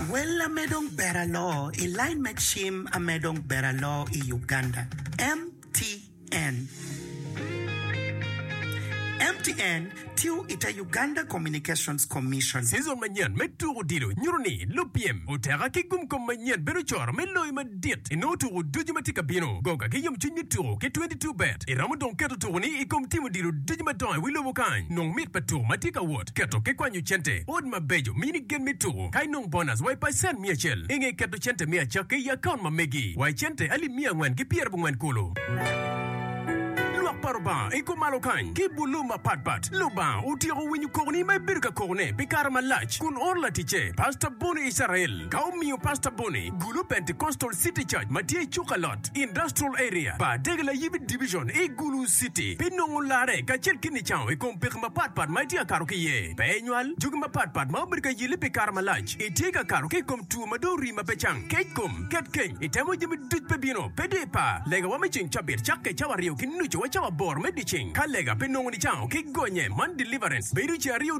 Well ame dong ber aloo i line me cim ame dong ber aloo i Uganda, MTN. MTN tiyo i te Uganda Communications Commission. Season manyen me tuko odilo nyuto ni lupyem oteka ki gumkom manyen bedo coro me loyo madit. dit i nongo tuku ducu ma tye ka bino. Go kaki yomcwiny me tuku ki 22 bet. I romo dong keto tukuni i kom timo dilo ducu madongo i wi lobo kany. Nong mit pa tuku ma tye ka wot, keto ki kwanyo cente, ot mabeco, mini gen me tuku, ka inong bonus wa i pacent miya acel. I nge keto cente me acakki i akaunt ma megi wa i cente alip miya angwen ki pyer abongwen kulu. Lwak pa Lubanga i kom malo kany ki i bur lobo mapat pat. Lubanga otyeko winyo kokoni ma ibedo ka kokone pi kare malac kun oro laticce, Pastor Bonnie Israel. Ka omiyo Pastor Bonny gulu Pentecostal City Church ma tye i Chukalot Industrial Area, bar Dege Layibi Division i Gulu City pi nongo larre kacel ki nicango i kom peko mapat pat ma itye ka kato ki iye. Pe inywal jogi mapat pat ma obedo ka yelli pi kare malac. Itye ka kato ki i kom two ma dong orii ma pe cang, kec kom, ket keny, itemo jami duc pe bino. Pe di ipa, legawa me ceng cabit cakke cawa aryo ki nucu wa cawa aboro me dyeceng. Ka lega pe nongo nicango ki gonye man, deliverance, bedo ce aryo,